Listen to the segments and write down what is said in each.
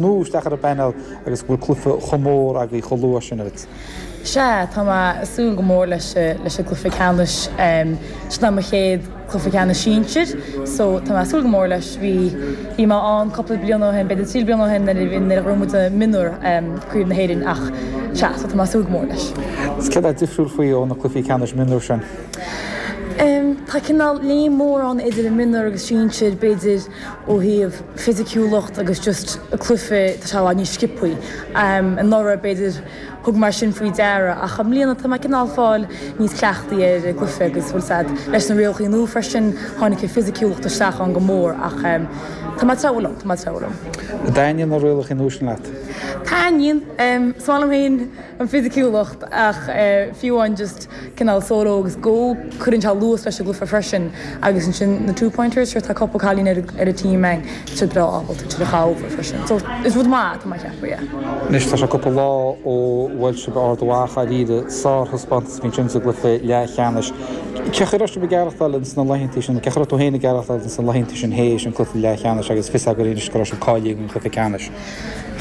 nó isteach ar an bpainéal agus go bhfuil cluife chomh mór a'd chomh luath sin agat. Sea, tá mé a' súil go mór leis a, leis a' gcluife ceannais, em, sin é mo chéad chluife ceannais sinsir, so, tá mé a' súil go mór leis, bhí, bhí mé ann cupla bliain ó shin, b'fhéidir trí bliana ó shin nuair a bhí, nuair a ghnóthaigh muid a' mionúr, em, Craobh na hÉireann ach, sea, so tá mé a' súil go mór leis. Agus céard tá difriúil faoi ó na cluifí ceannais mionúr sin? Em, tá cineál léim mór ann idir an mionúr agus sinsir, b'fhéidir. ó thaobh fisiciúlacht agus just cluife tá sé a lán níos sciopthaí. Anuraidh, b'fhéidir, thug mé é sin faoi deara ach i mbliana tá mé cineál fáil níos cleachtaí ar an gcluife agus bhfuil a fhios a'd leis na rialachaí nua freisin, tháinig an fisiciúlacht isteach ann go mór ach tá mé ag treabhadh liom, tá mé ag treabhadh liom. An dtaitníonn na rialachaí nua sin leat? Taitníonn. Is maith liom féin an fisiciúlacht ach fiú amháin just. cineál solo agus go cuireann sé luas leis an gcluife freisin agus ansin na two pointers sure tá cupla cailín ar a team tá siad breá ábalta iad a chur thar freisin so is rud maith é tá mé ag ceapadh yeah. Anois tá sé cúpla lá ó bhuail sibh Ard Mhacha, dáiríre sárthaispeántas a bhí ansin sa gcluiche leathcheannais. Cén chaoi a raibh sibh ag aireachtáil ins na laethanta sin, cén chaoi a raibh tú féin ag aireachtáil ins na laethanta sin théis an cluiche leathcheannais agus fios agaibh anois go raibh sibh cáilithe don chluiche ceannais?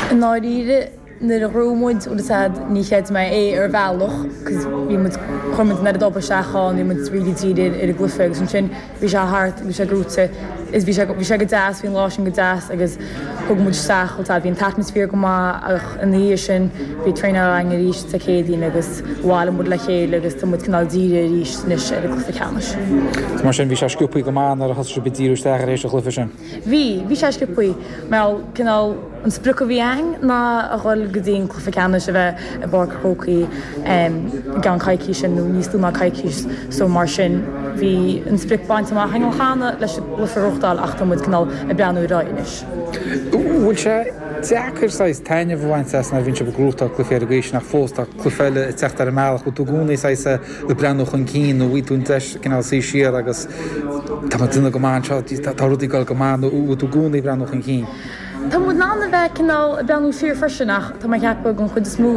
I ndáiríre, Nuair a ghnóthaigh muid bhfuil a fhios a'd níor chreid mé é ar bhealach 'cause bhí muid, chuir muid an oiread obair isteach ann, bhí muid really dírithe ar an gcluife agus ansin bhí sé thart agus bhí sé gnóite is bhí sé, bhí sé go deas, bhí an lá sin go deas agus thug muid isteach bhfuil a fhios a'd, bhí an t-atmaisféar go maith ach ina dhiaidh sin bhí traenáil againn arís Dé Céadaoin agus bhailigh muid le chéile agus tá muid cineál dírithe arís anois ar an gcluife ceannais. Mar sin bhí sé sciobtha go maith nuair a thosaigh sibh ag díriú isteach tar éis an chluife sin. Bhí, bhí sé sciobtha. Bhuel, cineál, an sprioc a bhí againn ná a dhul go dtí an cluiche ceannais a bheith i bPáirc an Chrócaigh i gceann coicíse nó níos lú ná coicís. So, mar sin, bhí an sprioc bainte amach againn cheana leis an gcluiche a ghnóthachtáil ach tá muid, cineál, ag breathnú ar aghaidh anois. Bhfuil sé deacair saghas taitneamh a bhaint as nuair a bhíonn sibh ag gnóthachtáil cluichí ar an gcaoi sin ach fós tá cluiche eile ag teacht ar an mbealach. Bhfuil tú i gcónaí saghas a. ag breathnú chun cinn nó bhfuil tú in ann cineál suí siar agus tá muid ag déanamh go maith anseo, tá rudaí ag dul go maith nó bhfuil tú i gcónaí ag breathnú chun cinn? Tá muid in ann a bheith cineál ag breathnú siar freisin ach tá mé ag ceapadh gur don chuid is mó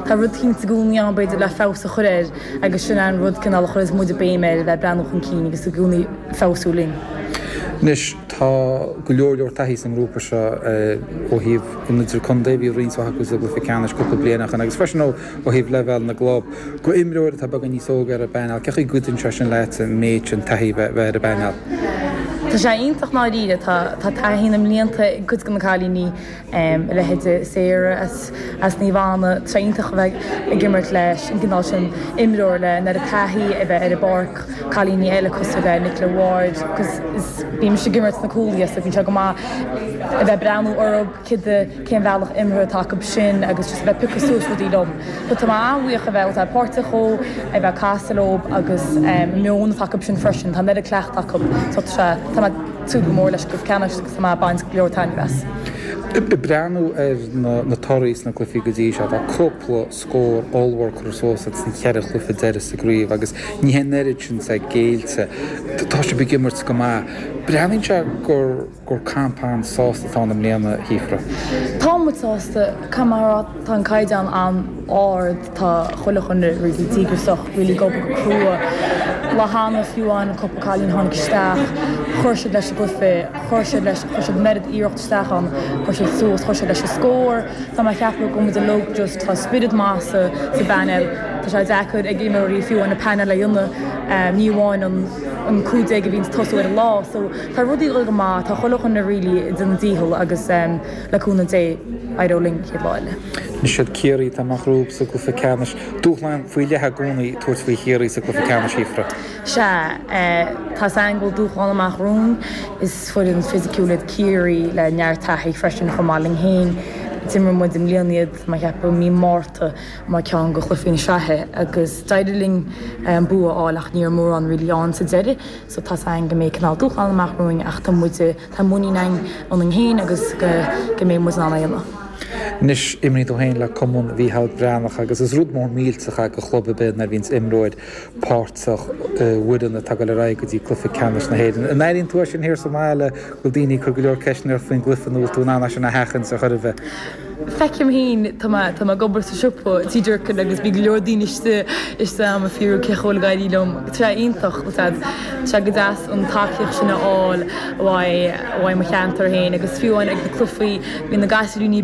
tá rud eicínt i gcónaí ann b'fhéidir le feabhas a chur air agus sin an rud cineál a chuireas muid a béim air a bheith ag breathnú chun cinn agus i gcónaí feabhsú linn. Anois tá go leor leor taithí sa ngrúpa seo ó thaobh an idirchontae, bhí roinnt mhaith acu sa gcluiche ceannais cúpla bliain ó shin agus freisin ó ó thaobh leibhéal na gclub, do imreoir atá beagán níos óige ar an bpainéal, cén chaoi a gcuidíonn sé sin leatsa an méid sin taithí a bheith ar an bpainéal? Tá sé iontach i ndáiríre. Tá taithí na mblianta ag cuid de na cailíní, a leithéid de Sarah as Naomh Anna, tá sé iontach a bheith ag imirt leis an gcineál sin imreoir le an oiread taithí a bheith ar an bpáirc, cailíní eile cosúil le Nicola Ward, bímse ag imirt sna cúlaithe so bíonn sé go maith a bheith ag breathnú orthu. cibé cén bhealach imeartha atá acu sin agus just a bheith ag piocadh suas rudaí lom. So tá mé an-bhuíoch a bheith ag úsáid páirteach dhó, ag bheith ag casadh leob agus an meon atá acu sin freisin, tá an oiread cleachtadh acu so tá sé, tá mé ag súil go mór leis go ceannacht agus tá mé ag baint go leor taitnimh as. Ag breathnú ar na torthaí sna cluichí go dtí seo, tá cúpla scór ollmhór curtha suas agaibh sna ceithre chluiche deiridh sa gcraobh agus ní hé an oiread sin atá géillte. Tá sibh ag imirt go maith. Breathnaíonn sé gur. gur campa an-sásta atá ann i mbliana, a Shíofra. Tá muid sásta, camara, tá an caighdeán an-ard, tá chuile dhuine really díograsach, really ag obair go crua. An lá cheana, fiú amháin, cúpla cailín a tháinig isteach, chuir siad leis an gcluiche, chuir siad leis, chuir siad an oiread iarracht isteach ann, chuir siad suas, chuir siad leis an scór, tá mé a cheapadh go bhfuil muid uilig just, tá spiorad maith sa bpainéal, tá sé deacair ag imreoirí fiú amháin an painéal a dhéanamh, ní amháin an 15 a bhíonn ag tosú ar an lá, so. Tá rudaí ag dul go maith, tá chuile dhuine really ag déanamh a ndícheall agus le cúnamh Dé, éireoidh linn an chéad lá eile. Anois is iad Ciarraí atá amach romhaibh sa gcluiche ceannais. Dúshlán faoi leith i gcónaí tabhairt faoi Chiarraí sa gcluiche ceannais, Shíofra. Sea, tá a fhios againn go bhfuil dúshlán amach romhainn. Is foireann fisiciúil iad Ciarraí le neart taithí freisin, chomh maith linn fhéin. D'imir muid i mbliana iad, tá mé a cheapadh, mí Márta mar ceann de chluichí na sraithe agus d'éirigh linn an bua a fháil ach ní raibh mórán really ann sa deireadh. So tá a fhios againn go mbeidh cineál dúshláin amach romhainn ach tá muid, tá muinín againn ionainn féin agus go mbeidh muid in ann é a dhéanamh. Anois imríonn tú féin le Cumann Mhícheál Breathnach agus is rud mór millteach é go chlub ar bith nuair a bhíonns imreoir páirteach i bhfoireann atá ag dul ar aghaidh go dtí cluiche ceannais na hÉireann. An airíonn tú é sin thiar sa mbaile go bhfuil daoine ag cur go leor ceisteanna ort faoin gcluiche nó bhfuil tú in ann é sin a sheachaint ar chor ar bith? Feicim féin, tá mé, tá mé ag obair sa siopa Tí Durkin agus bhí go leor daoine istigh, istigh agam ag fiafraí cén chaoi a bhfuil ag éirí liom, tá sé iontach, ba sad, tá sé go deas an tacaíocht sin a fháil uaidh, uaidh mo cheantar féin agus fiú amháin ag na cluichí, bhí na gasúiríní.